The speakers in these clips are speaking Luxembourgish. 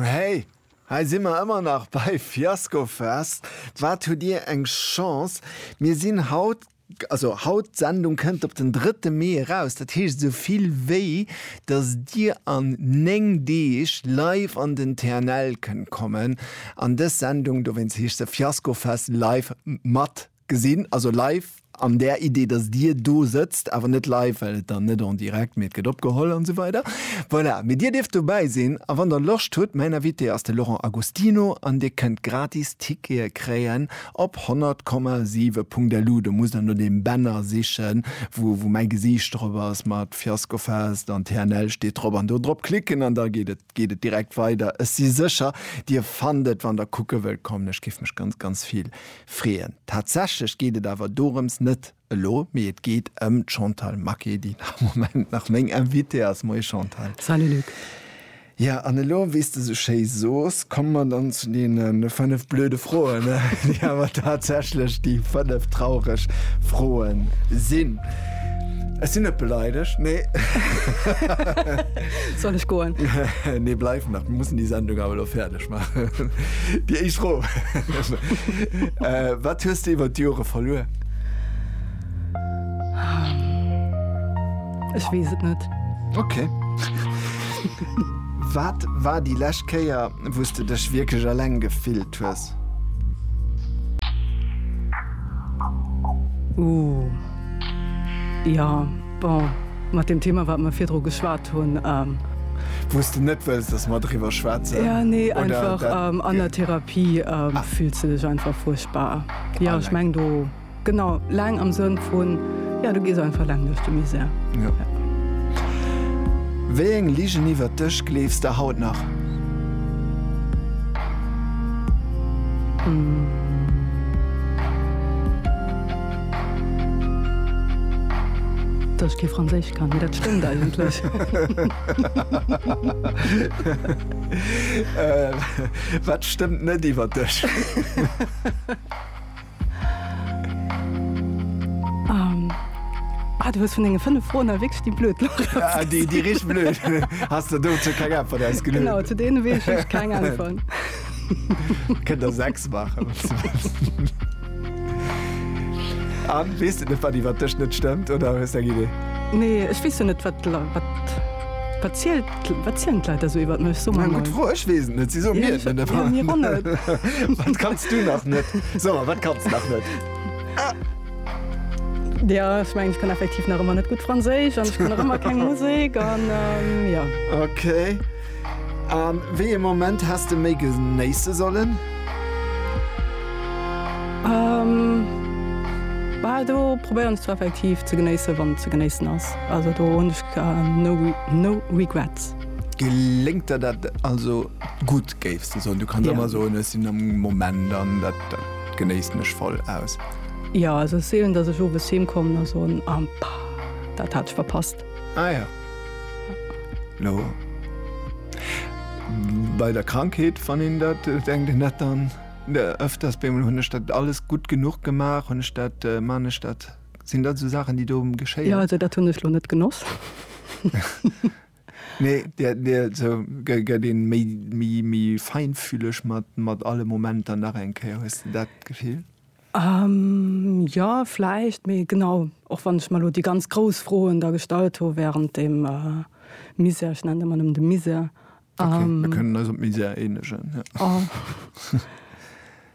Hey, hei si mer ëmmer nach bei Fiaskofest. Wat hutt Dir eng Chance, mir sinn haut, also haut, d'Sendung kënnt op den drëtte Mee eraus, dat heescht esou vill wéi datt Dir an néng Deeg live an den TNL kënnt kommen an dës Sendung, dowéinst heescht se Fiaskofest live, mat Gesinn, also live an där Idee, dass Dir do sëtzt, awer net live, well et dann net en direct, mee et gëtt opgeholl an esou weider. Voilà, mee Dir dierft dobäi sinn a wann Der Loscht hutt, mäin Invité ass de Laurent Agostino an Dir kënnt gratis Tickete kréien op 100,7.lu. Do musst Der no deem Banner sichen, wou mäi Gesiicht drop ass mat Fiasco Fest an TNL steet drop an do drop klicken an da geet et, geet et direkt weider. Ech si sécher, Dir fannt et, wann Der kucke wëllt kommen. Ech géif mech ganz, ganz vill Freeën. Tatsächlech geet et awer dorëms net elo, mee et geet ëm d'Chantal Maquet, déi am Moment nach meng Invitée ass. Moie Chantal. Salut Luc. Jo, an elo, wéi s de esou schéi sos, komme mer dann zu deene fënnef blöde Froen, déi awer tatsächlech déi fënnef traureg Froe sinn. Ech sinn net beleidegt, nee. Soll ech goen? Nee, bleif nach, mir mussen déi Sendung awer elo fäerdeg bréngen. maachen. Déi éischt Fro, Wat hues de iwwer d'Jore verluer? Ech weess et net. Ok. Wat war déi lescht Kéier, wou s de dech wierklech eleng gefillt hues? Ooh, jo. Bon, mat deem Thema, wat mer virdru geschwat hunn. Wou s de net wëlls, dass mer driwwer schwätzen? Jo, nee, einfach an der Therapie fills de dech einfach fuerchtbar. Jo, ech meng do, genau, laang am Sënn vun, jo, du gees einfach laang duerch de Misär. Jo. Wéi eng Ligen iwwert dech gleefs de haut nach? Dass ech kee Franséisch kann, mee dat stëmmt eigentlech. Wat stëmmt net iwwer dech? Ah, du hues vun denge fënnef Froen awer wierklech déi blöd lass. Déi richteg blöd. Has de dozou keng Äntwert ausgeluecht? Genau, zu deene weess ech keng Äntwert. Kënnt der sechs maachen. Anne, weess de net, wat iwwer dech net stëmmt, oder hues de eng Idee? Nee, ech weess jo net, wat d'Leit, wat, wat zielt, wat zielen d'Leit da sou iwwert mech? So mal. Gutt Fro, ech weess et net, si soen mir et net. Jo, mir och net. Wat kanns du nach net? So mal, wat kanns de nach net? Jo, ech mengen, ech kann effektiv nach ëmmer net gutt Franséisch an ech kann nach ëmmer keng Musek an, jo. Okay. A wéi ee Moment häss de méi genéisse sollen? Bal do probéieren ech zwar effektiv ze genéisse wann ze genéissen ass. Also do hunn ech no regrets. Geléngt der dat also gutt géifs de soen? Du kanns ëmmer soen, ech sinn am Moment an dat genéissen ech voll aus. Jo, also et si seelen, datt ech owes heem kommen a soen, ah, dat hat ech verpasst. Ah ja. No. Bei der Krankheet wann een dat äh, denkt en dat dann äh, öfters bemol hunn ech dat alles gutt genuch gemaach, hunn ech dat äh, man ech dat sinn dat so Saachen déi do Ja, geschéien. also dat hunn ech lo net genoss. Nee, dir, dir so, gë- gëtt een méi méi méi feinfühleg mat mat alle Momenter nach eng Kéier, hues de dat Gefill? Jo, vläicht. Mee genau, och wann ech mer elo déi ganz grouss Froen da gestallt hu wärend deem Misär, ech nennen et ëmmer nëmmen de Misär. Okay, mir kënnen eis op Misär eenegen, jo.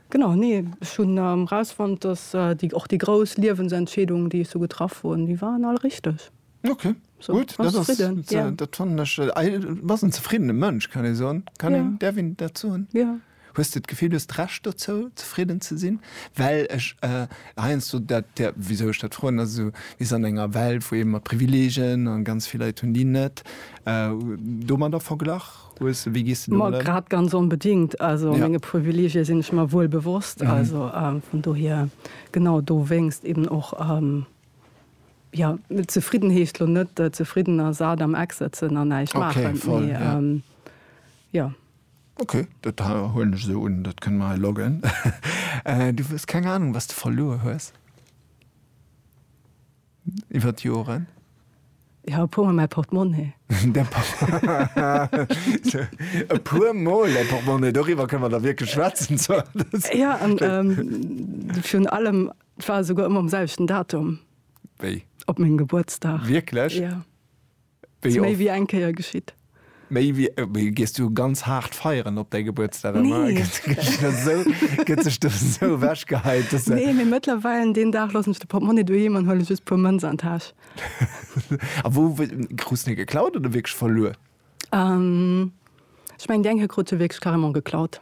Genau, nee, ech hunn erausfonnt, dass déi, och déi grouss Liewensentscheedungen, déi ech sou getraff hunn, déi waren all richteg. Okay, gutt, dat ass, dat fannen ech, du bass en zefriddene Mënsch, kann ee soen? Kann een, däerf een dat soen? Jo. Hues de d'Gefill, du hues d'Recht dozou, zefridden ze sinn? Well ech heiansdo dat, wisou ech dat froen, ass esou, mir sinn an enger Welt, wou ee mat Privileegien, a ganz vill Leit hunn déi net, domadder verglach hues. Wéi gees de domat ëm? Ma grad ganz onbedéngt. Also menge Privileegie sinn ech mer wuel bewosst. Also vun dohier, genau dowéinst eben och, jo, zefridden heescht lo net zefridden a sat am Eck sëtzen an näischt maachen, mee jo. Ok, dat huelen ech esou un. Dat kënne mer hei loggen. Du hues keng Anung, was de verluer hues iwwer d'Joren? Jo, e puermol mäi Portemonnaie. E puermol däi Portemonnaie, doriwwer kënne mer da wierklech schwätzen. Jo, an virun allem, et war esouguer ëmmer um selwechten Datum. Wéi? Op mengem Gebuertsdag. Wierklech? Jo. Wéi oft? Méi wéi eng Kéier geschitt. Méi wéi, wéi gees du ganz haart feieren op däi Gebuertsdag ëmmer? Nee. Gëtt sech do esou ewech geheit, dass se. Nee, mee mëttlerweil deen Dag loossen ech de Portmonni doheem an huele just puer Mënz an d'Täsch. A wou krus de se geklaut oder wierklech verluer? Ech mengen déi eng hei krut se wierklech carrément geklaut.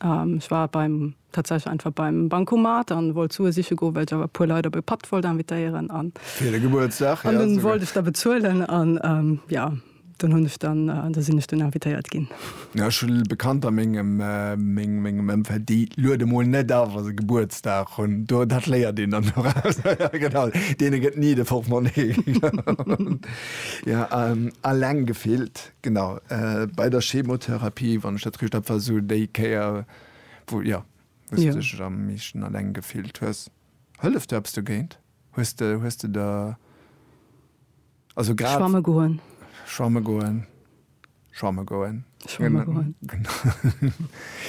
Ech war beim, tatsächlech einfach beim Bancomat an wollt Sue siche goen, well ech awer e puer Leit op e Patt wollt invitéieren an. Fir de Gebuertsdag, ja. An dunn wollt ech da bezuelen an, ja, dunn hunn ech dann, da sinn ech dunn invitéiert ginn. Ja, ech hunn Bekannter a mengem, mengem Ëmfeld, déi luede mol net a wa se Gebuertsdag hunn. Do, dat léiert een dann doraus. Ja, genau, deene gëtt ni de Portmonnee. Ja, alleng gefillt. Genau, bei der Chemotherapie, wann ech dat richt hab, war sou déi Kéier, wou, jo, wou s de dech am meeschten alleng gefillt hues. Hëlleft do eppes dogéint? Hues de, hues de der, also grad. Schwamme goen. Schwamme goen. Schwamme goen. Schwamme goen.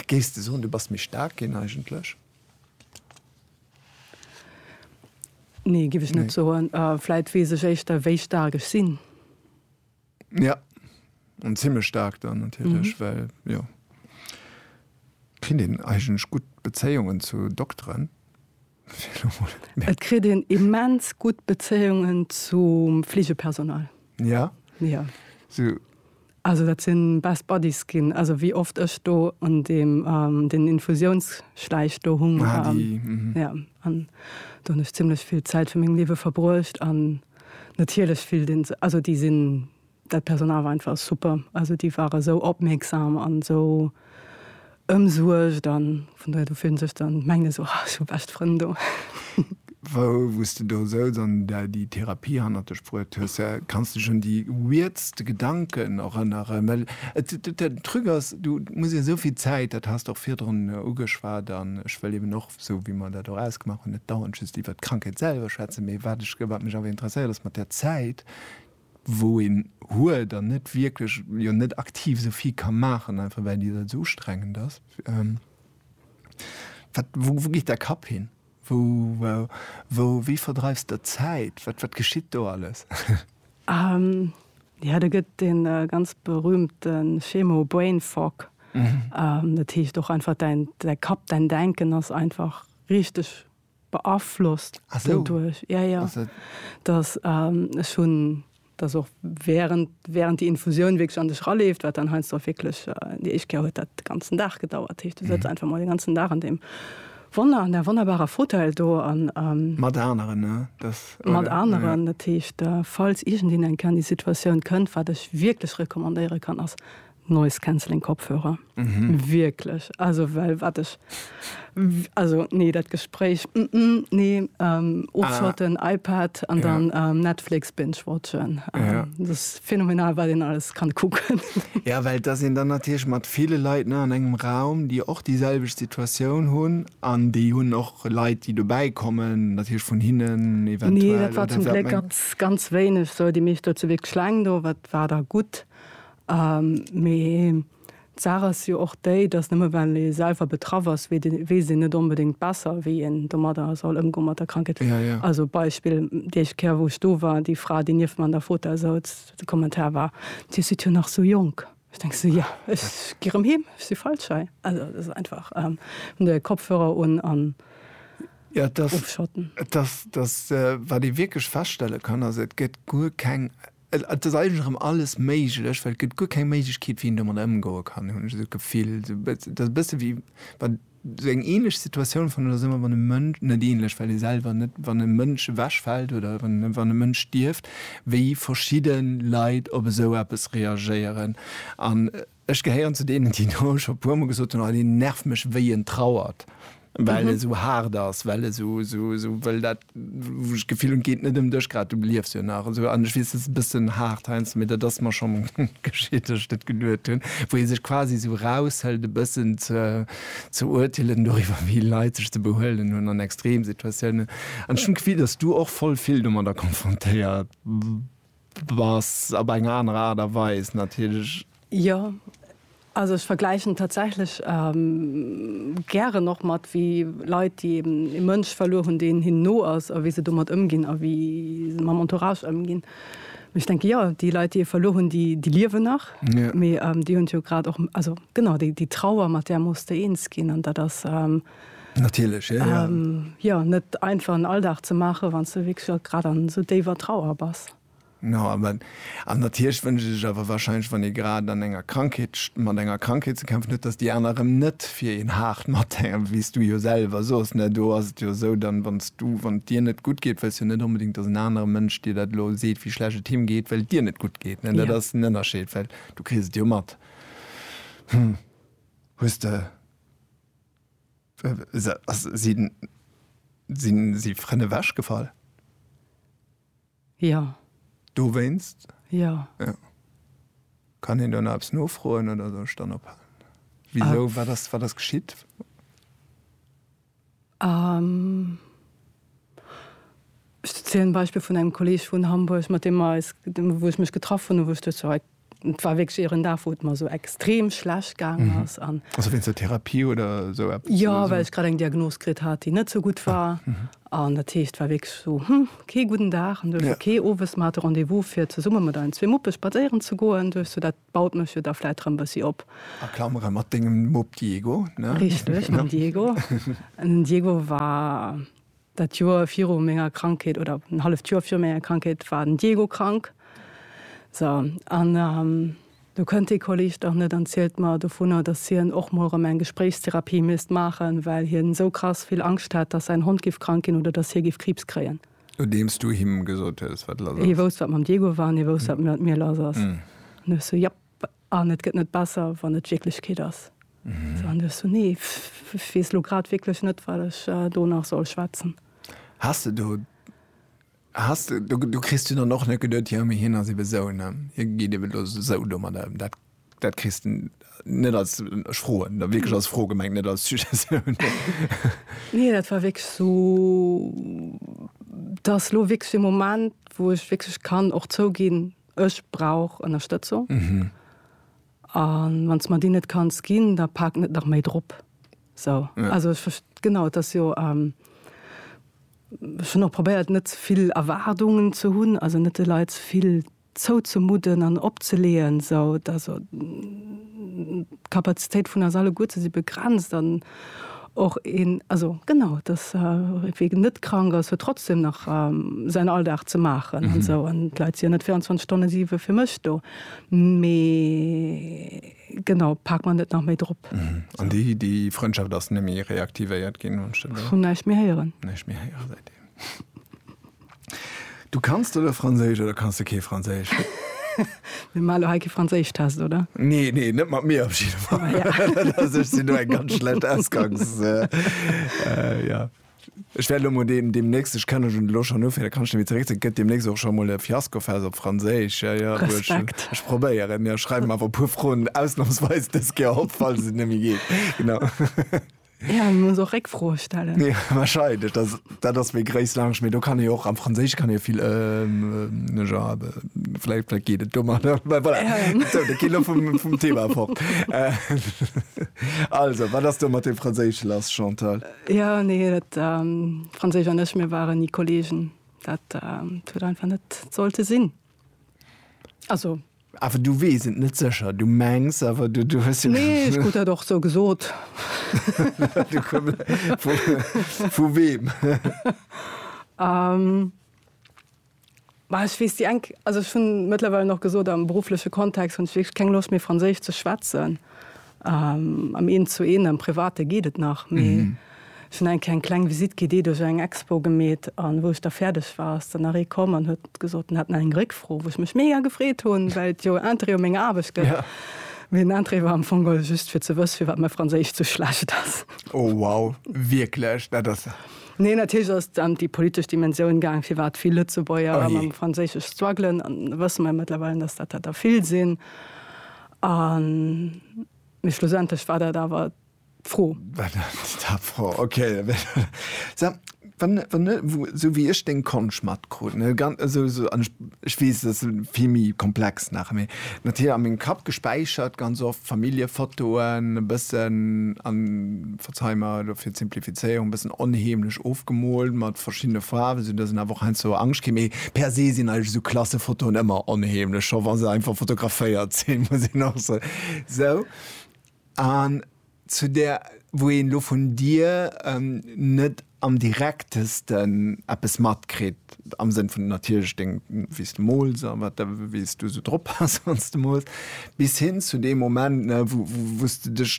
Géifs de soen, du bass méi staark ginn eigentlech? Nee, géif ech net soen. Vläit weess ech éischter, wéi staark ech sinn. Ja an zimmlech staark dann natierlech, mhm. well jo kritt een eigentlech gutt Bezéiungen zu Dokteren. Et kritt een immens gutt Bezéiungen zum Fligepersonal. Ja. Ja. So. Also dat sinn best Buddies ginn, also wéi oft ech do an dem ähm, den Infusiounsschläich do hung ah, ähm, mhm. ja, an do ech ziemlichlech vill Zäit fir mengem Liewe verbruecht an Natierlech fillt een sech, also déi sinn, dat Personal war einfach super, also déi ware sou opmierksam an esou ëmsuergt an vun dohier do fillt een sech dann, mengt een esou, ah ech hu bescht Frënn do. Wou s de do souz an der déi Therapie hannert de Spruet hues, kanns de dech un déi weirdste Gedanken erënneren? Well et, den Truc ass, du muss jo esou vill Zäit, dat has de och virdrun ugeschwat an ech wëll eben och, esou wéi mer dat och ausgemaach hunn, net dauernd just iwwert d'Krankheet selwer schwätzen, mee wat ech, wat mech awer interesséiert ass mat där Zäit, wou een huet an net wierklech, jo net aktiv esou vill ka maachen, einfach well déi Zäit esou ustrengend ass, wat, wou, wou geet däi Kapp hin? Wou, wou, wéi verdreifs de d'Zäit? Wat, wat geschitt do alles? Jo, do gëtt dee ganz berühmte Schemo Brain Fog. Dat heescht och einfach däin Kapp, däin Denken ass einfach richteg beaflosst doduerch. Jo, jo. Dass ech hunn, dass och während, während déi Infusioun wierklech an dech eraleeft, wat dann heiansdo och wierklech, déi éischt Kéier huet dat de ganzen Dag gedauert. Dat heescht, du sëtz einfach mol den ganzen Dag an deem Wonner an där wonnerbarer Fauteuil do an. Mat aneren, ne? Dass, oder? Mat aneren. Dat heescht, falls iergendeen eng Kéier an déi Situatioun kënnt, wat ech wierklech recommandéiere kann, ass Noise-Canceling-Kopfhörer. Wierklech. Also, well wat ech, also, nee, dat Gespréich, nee, ofschotten, iPad an dann Netflix binge-watchen. Dat ass. Phänomenal wat een alles kann kucken. Jo well et ass een dann natierlech mat ville Leit ne an engem Raum déi och déi selwecht Situatioun hunn an déi hunn och Leit déi dobäi kommen natierlech vun hinnen eventuell. Nee dat war zum Gléck ganz ganz wéineg sou déi meescht do zu Wierkleng do wat war da gutt mee. D'Saach ass jo och déi, dass nëmme well ee selwer betraff ass, weess een net onbedéngt besser, wéi een domadder soll ëmgoen, mat der Krankheet. Also Beispill, déi éischt Kéier, wou ech do war, déi Fra, déi nieft mer an der Fota souz, de Kommentar war, Dir sidd jo nach sou jonk. Ech denke sou, Jo, ech gi rëm heem, ech si feilschei. Also et ass einfach, hunn der hir Kopfhörer un an ofschotten. Et ass, wat ee wierklech feststelle kann, ass, et gëtt guer keng Et ass eigentlech erëm alles méiglech, well et gëtt guer keng Méiglechkeet, wéi een domadder ëmgoe kann, hunn ech esou d'Gefill. Et ass e bësse wéi wann, esou eng änlech Situatioun fannen ech dat ëmmer, wann e Mënsch, net änlech, well ee selwer net, wann e Mënsch ewechfält oder wann e Mënsch stierft, wéi verschidde Leit op esou eppes reagéieren an, Ech gehéieren zu deenen, déi do scho e puermol gesot hunn, Oh, deen nervt mech, wéi en trauert, well e sou haart ass, well e sou, sou, sou wëll dat, wou ech d'Gefill hunn, et geet net ëm dech grad, du liefs jo nach esou. An ech weess, dat ass e bëssen haart heiansdo, mee dat ass mer scho geschitt, datt ech dat geduet hunn, wou ee sech quasi sou eraushëlt, e bëssen ze, ze urteelen doriwwer, wéi Leit sech ze behuelen hunn an Extremsituatiounen. An ech hunn d'Gefill, datt s du och voll vill domadder konfrontéiert. Bass op eng aner Aart a Weis natierlech. Jo, also ech vergläichen tatsächlech gären och mat wéi Leit, déi eben ee Mënsch verluer hunn, deen hinnen no ass, a wéi se domat ëmginn a wéi se mam Entourage ëmginn. Mee ech denke jo, déi Leit, déi ee verluer hunn, déi liewen nach, mee déi hunn jo grad och, also genau, déi Trauer, mat där muss de eens ginn an dat ass. Natierlech, jo. Jo, net einfach en Alldag ze maachen, wann s de wierklech och grad an esou déiwer Trauer bass. No, awer, an natierlech wënscht ee sech awer wahrscheinlech, wann ee grad an enger Krankheet, mat enger Krankheet ze kämpfen huet, datt déi aner erëm net fir een haart mathänken, wéi s du jo selwer sos, ne? Do ass et jo esou, dann, wann s du, wann et dir net gutt geet, wëlls jo net onbedéngt, datt en anere Mënsch dir dat elo seet, wéi schlecht et him geet, well et dir net gutt geet, ne? Dat ass den Ënnerscheed, well du kriss et jo mat. Hm, hues de. Sinn si Frënn ewech gefall? Jo. Dowéinst? Jo. Kann een do nach eppes nofroen oder soll ech dann ophalen? Wisou, wat ass geschitt? Ech zielen d'Beispill vun engem Kolleg vun Hamburg, mat deem mer eis, wou ech mech getraff hunn, wou ech duecht, jo, et war wierklech ieren Dag, wou et mer esou extrem schlecht gaangen ass. Also wéinst der Therapie oder esou eppes? Jo, well ech grad eng Diagnos kritt hat, déi net esou gutt war. An dat heescht, et war wierklech esou, hm, kee gudden Dag. An du hues jo kee owes. Mer hate Rendez-vous, fir zesumme mat eisen zwee Muppe spadséieren ze goen. Du hues jo dat Baut mech jo da vläit rëm bëssi op. A Klamere mat dengem Mupp Diego, ne? Richteg, mam Diego. Den Diego war dat Joer viru menger Krankheet, oder en halleft Joer viru menger Krankheet war den Diego krank. So, an do kënnt dee Kolleg dach net an zielt mer dovunner, dass hien och mol rëm eng Gespréichstherapie misst maachen, well hien esou krass vill Angscht hätt, dass säin Hond giff krank ginn oder dass hie giff Kriibs kréien. Nodeems du him gesot hues, wat lass ass. Hie wousst, wat mam Diego war, an hie wousst, wat mat mir lass ass. An du hues sou, Japp, an et gëtt net besser, wann et d'Wierklechkeet ass. Sou, an du hues sou, Nee, ech weess elo grad wierklech net, wat ech do nach soll schwätzen. Has de do, has de, do kriss du dann och net geduet, Jo, mee hien ass ebe sou, ne, hie geet ebe elo sou domadder ëm. Dat Dat kriss de net als, ech froen da wierklech als Fro gemengt, net als Suggestioun. Nee, dat war wierklech esou, dat ass elo wierklech e Moment, wou ech wierklech kann och zouginn, ech brauch Ënnerstëtzung. A wann s de mer déi net kanns ginn, da pak net nach méi drop. Esou, also ech verst-, genau, et ass jo, ech hunn och probéiert, net ze vill Erwaardungen ze hunn, also net de Leit ze vill zouzemudden an opzeleeën, esou dass d'Kapazitéit vun eis alleguerten si begrenzt an och een, also genau, dass wien net krank ass, huet trotzdem nach säin Alldag ze maachen an esou an d'Leit si jo net 24 Stonne siwe fir mech do, mee genau, pak mer net nach méi drop. An déi Frëndschaft ass net méi reaktivéiert ginn? Ech hunn näischt méi héieren. Näischt méi héieren seitdeem. Du kanns de lo Franséisch oder kanns de kee Franséisch? Mir maache lo hei kee Franséischtest, oder? Nee, nee, net mat mir op jidde Fall. Ah, ja. Also, ech sinn do eng ganz schlecht Ausgangs... äh, äh, ja. Ech wäert lo mol deem, deemnächst, ech kann elo lo schonn ufänken, da kann ech nämlech zeréck, gëtt deemnächst och scho mol e Fiaskofest op Franséisch. Ja, ja, du, ech, Respekt. ech probéieren. Mir schreiwen awer e puer Froen ausnamsweis dës Kéier op, falls et net méi geet. Genau. Ja, muss och Réckfroe stellen. Ja, wahrscheinlich. Das, das ist mir Grace Lounge. Mir, du kann ich auch am Französisch kann ich viel, ähm, ne, ja, vielleicht, vielleicht geht es dummer. Voilà. Ja. So, da geht vom, vom Thema fort. Äh, also, was hast du mit dem Französisch lass, Chantal? Äh, ja, nee, das, ähm, Französisch und ich, wir waren nie Kollegen. Das, ähm, tut einfach nicht sollte Sinn. Also, Awer du weess et net sécher, du mengs awer, du, du hues jo. Nee, ech krut dat och sou gesot. Vu weem? Bah, ech weess déi eng, also ech hunn mëttlerweil och gesot, am beruffleche Kontext hunn ech wierklech keng Loscht méi Franséisch ze schwätzen. Am Eent zu Eent, am Private geet et nach, mee ech hunn eng Kéier eng kleng Visitt gi, déi duerch eng Expo gemeet. An wou ech da fäerdeg war, ass dann nach ee komm an huet gesot, en hätt nach eng Réckfro, wou ech mech mega gefreet hunn, well et jo Interêt u menger Aarbecht gëtt. Mee den Interêt war am Fong geholl just, fir ze wësse firwat mäi Franséisch sou schlecht ass. Oh wow, wierklech? Dat ass ja. Nee, natierlech ass et ëm déi politesch Dimensioun gaang, firwat vill Lëtzebuerger mam Franséisch struggelen. An da wësse mer jo mëttlerweil, dass dat der vill sinn. A mee schlussendlech war dat awer d'Fro. War dat d'Fro, ok. Sag, wann, wann, esou wéi ech deng Konscht matkrut, ne, ganz, also esou, an ech, ech weess, dat ass vill méi komplex nach, mee natierlech a mengem Kapp gespäichert ganz oft Familljefotoen e bëssen an. Ech hu mer elo fir d'Simplifizéierung e bëssen onheemlech ofgemoolt mat verschiddene Faarwen, esou datt een awer och heiansdo Angscht kritt. Mee per se sinn eigentlech esou Klassefotoen ëmmer onheemlech, scho wa se einfach fotograféiert sinn, muss een och soen. Sou, an zu där, wou een elo vun dir net am direktesten eppes matkritt, am Sënn vun natierlech deng, wéi s de mools a wat, wéi s du esou drop bass, wann s de mools, bis hin zu deem Moment, wou s de dech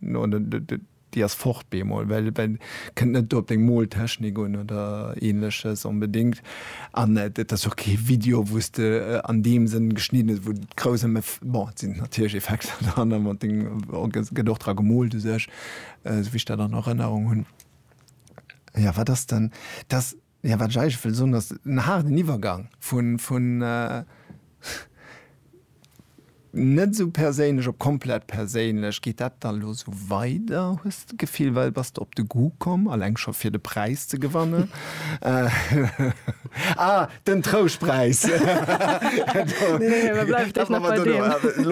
No de, de, de, déi ass fort bemol, well, well kënnt net do op deng Moltechnik un oder ähnleches onbedingt. An et ass jo och kee Video, wou s de an deem Sënn geschnidden hues, wou et grouss ëm Eff, bon, et sinn natierlech Effekter dran an mat deng, et gëtt och dra gemoolt u sech, esou wéi ech dat an Erënnerung hunn. Jo, wat ass dann, dass. Jo, wat ech eigentlech wëll soen ass, en haarden Iwwergang vun net esou perséinlech op komplett perséinlech. Geet dat dann elo esou weider, hues de d'Gefill, well bass de op de Goût komm, alleng scho fir de Präis ze gewannen? Ah, den Trouschtpräis! Elo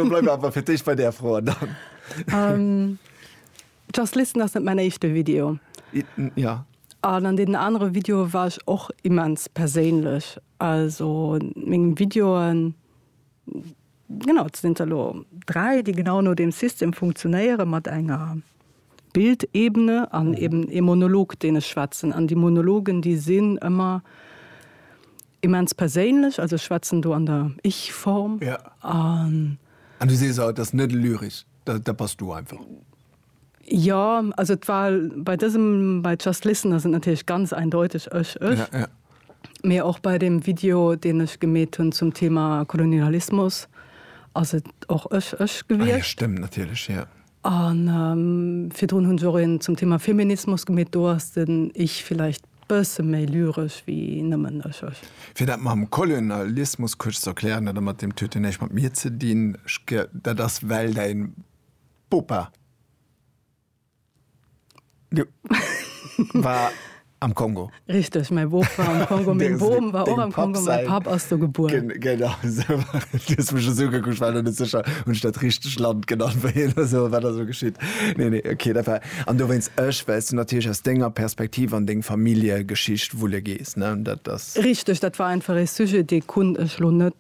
bleiwe mer awer fir d'éischt bei där Fro an dann. Just listen ass net mäin éischte Video. Ja. An an deenen anere Videoe war ech och immens perséinlech. Also meng Videoen, genau, et sinn der elo dräi, déi genau no deem System funktionéieren, mat enger Bildebene an eben ee Monolog, deen ech schwätzen. An déi Monologen, déi sinn ëmmer Immens perséinlech, also ech schwätzen do an der Ich-Form. An. An du sees, et ass net lyresch, dat bass du einfach. Jo, also et war bei dësem, bei Just Listen ass et natierlech ganz eindeuteg ech, ech. Mee och bei deem Video, deen ech gemeet hunn zum Thema Kolonialismus, ass et och ech, ech gewiescht. Ah jo, stëmmt natierlech, jo. A virdrun hunn se och een zum Thema Feminismus gemeet. Do ass den Ich villäicht bësse méi lyresch wéi nëmmen ech, ech. Fir dat mam Kolonialismus kuerz ze erklären, dat mat deem Tuet huet näischt mat mir ze dinn. Dat ass well däi Bopa. War am Kongo. Richteg, mäi Boob war am Kongo. Meng Bom war och am Kongo, mäi Papp ass do gebuer. Genau esou. Du hues mech esou ugekuckt, ech war net sécher, hunn ech dat richteg Land genannt, wéi hien da sou, wat ass elo geschitt? Nee, nee, okay, dat war. An dowéinst ech, well s du natierlech aus denger Perspektiv an deng Familljegeschicht wulle gees, ne? Dat ass. Richteg, dat war einfach e Sujet, dee konnt ech elo net.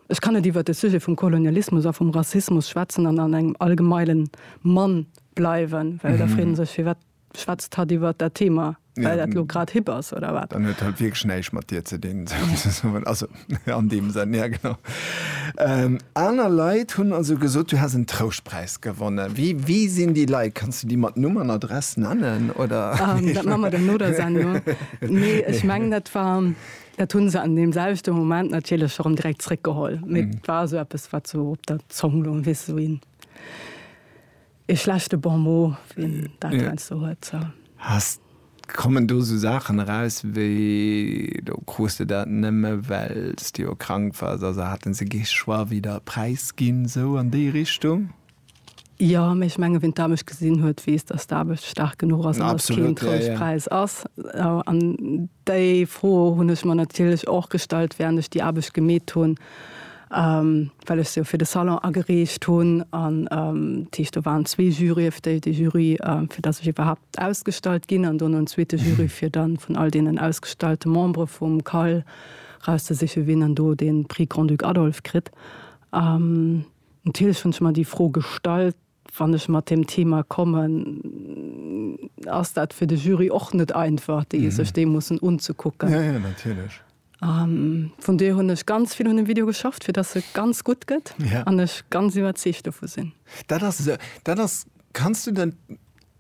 Ech kann net iwwer de Sujet vum Kolonialismus a vum Rassismus schwätzen an an engem allgemeile Mann bleiwen, well da freet ee sech, firwat schwätzt hatt iwwer dat Thema? Well dat elo grad hip ass, oder wat? Dann huet hatt wierklech näischt mat dir ze dinn, souzesoen. Also, an deem Sënn, ja genau. Aner Leit hunn also gesot, du häss en Trouschtpräis gewonnen. Wie, wie sinn déi Leit? Kanns du déi mat Numm an Adress nennen, oder? Dat maache mer dann no der Sendung. Nee, ech mengen, dat war. Dat hunn se an deem selwechte Moment natierlech erëm direkt zréckgeholl. Mee et war esou eppes, wat esou op der Zong loung, weess esou een, ee schlechte Bon mot, wien dat heiansdo huet, sou. Hast, kommen do esou Saachen eraus wéi, do krus de dat nëmme well s de jo krank wars, also haten se kee Choix, wéi der e Präis ginn, sou an déi Richtung? Jo, mee ech mengen, wien d'Aarbecht gesinn huet, weess, datt d'Aarbecht staark genuch ass an datt et keen Trouschtpräis ass. An déi Fro hunn ech mer natierlech och gestallt, wärend ech déi Aarbecht gemeet hunn, well ech se jo fir de Salon agereecht hunn. An dat heescht, do waren zwee Jurye fir déi, dee Jury, fir datt ech iwwerhaapt ausgestallt ginn, an dono en zweete Jury, fir da vun all deenen ausgestallte Membere vum CAL rauszesichen, wien dann do dee Prix Grand-Duc Adolphe kritt. Natierlech hunn ech mer déi Fro gestallt, wann ech mat deem Thema kommen, ass dat fir de Jury och net einfach, déi sech dee mussen unzekucken. Vun dohier hunn ech ganz vill un dem Video geschafft, fir dass e ganz gutt gëtt an ech ganz iwwerzeegt dovu sinn. Dat ass esou. Dat ass, kanns du dat,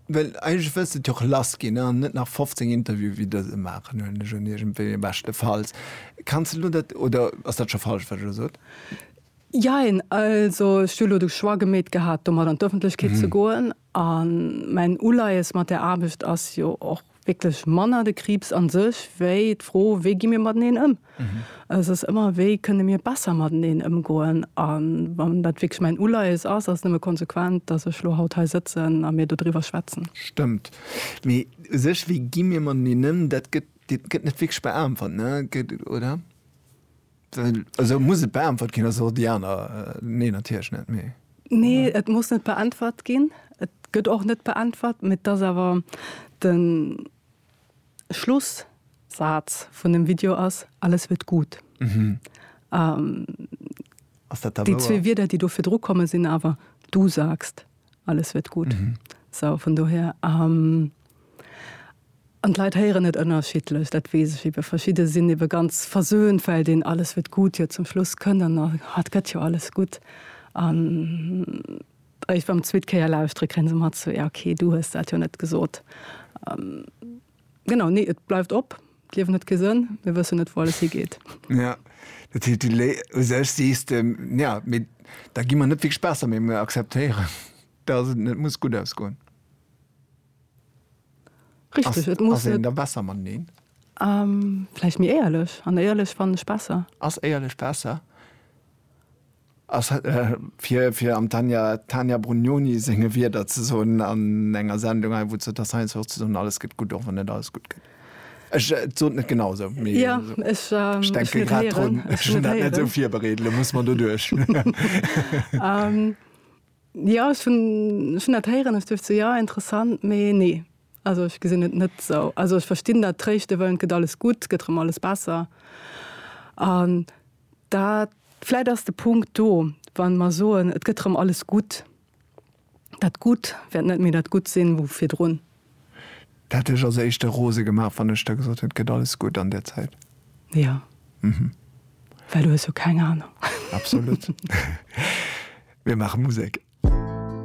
well eigentlech wëlls de et jo och lass ginn an net nach 15 Interviewe wéi dëse maachen, huelen ech un, iergendwéi, beschtefalls. Kanns de elo dat, oder ass dat scho falsch, wat ech elo sot? Jein, also ech hu elo de Choix gemeet gehat, domat an d'Öffentlechkeet ze goen. A mäin Uleies mat där Aarbecht ass jo och wierklech manner de Kriibs a sech, wéi d'Fro, wéi gi mir mateneen ëm. Et ass ëmmer, wéi kënne mir besser mateneen ëmgoen. A wann dat wierklech mäin Uleies ass, ass et nëmme konsequent, datt ech elo haut hei sëtzen a mir dodriwwer schwätzen. Stëmmt. Mee u sech, wéi gi mir mateneen ëm, dat gëtt net wierklech beäntwert, oder? Well esou muss et beäntwert ginn, also déi aner, nee natierlech net, mee. Nee, et muss net beäntwert ginn. Et gëtt och net beäntwert, mee et ass awer de Schlussaz vun dem Video ass, Alles wird gut. Ass dat da wouer? Déi zwee Wierder, déi do virdru komme sinn awer, Du sagst. alles wird gut. Mhm. So, von doher, ähm, an d'Leit héieren net ënnerschiedlech, dat wees ech eben. Verschidde sinn eben ganz versöhnt, well deen alles wird gut jo zum Schluss kënnt an dann, ah, et gëtt jo alles gutt. An eréischt beim zweet Kéier lauschtere kréie se mat, so, ja, okay, du hues dat jo net gesot. Ähm. Genau, nee, et bleift op. D'Liewen huet kee Sënn, mir wëssen net, wou alles higeet. Ja, dat heescht, du lé u sech sees de, ja, mee da gi mer net wierklech besser, mee mir akzeptéieren, dass et net muss gutt ausgoen. Richtig, et muss net. Ass een da besser mateneen? Ähm, vläicht méi éierlech. An éierlech fannen ech besser. Ass éierlech besser? Fir am Tania Brugnoni senge Wierder ze soen an enger Sendung hei, wou d'Jutta Stein soucht ze soen, alles gëtt gutt, och wann net alles gutt gëtt. Ech, et sot net genau esou, mee ech denke grad drun. Ech hunn dat net esou virbereet, elo muss mer doduerch. Jo, ech hunn dat héieren, ech duecht esou, jo, interessant, mee nee, Also ech gesinn et net esou. Also ech verstinn dat tréischte wëllen, et gëtt alles gutt, et gëtt erëm alles besser an dat. Vläit ass de Punkt do, wa mer soen, et gëtt erëm alles gutt, dat Gutt wäert net méi dat Gutt sinn wou virdrun. Dat hätt dech als éischte rose gemaach, wann ech der gesot hätt, et gëtt alles gutt an där Zäit? Jo. Mhm. Well du hues jo keng Anung. Absolut. Mir maache Musek.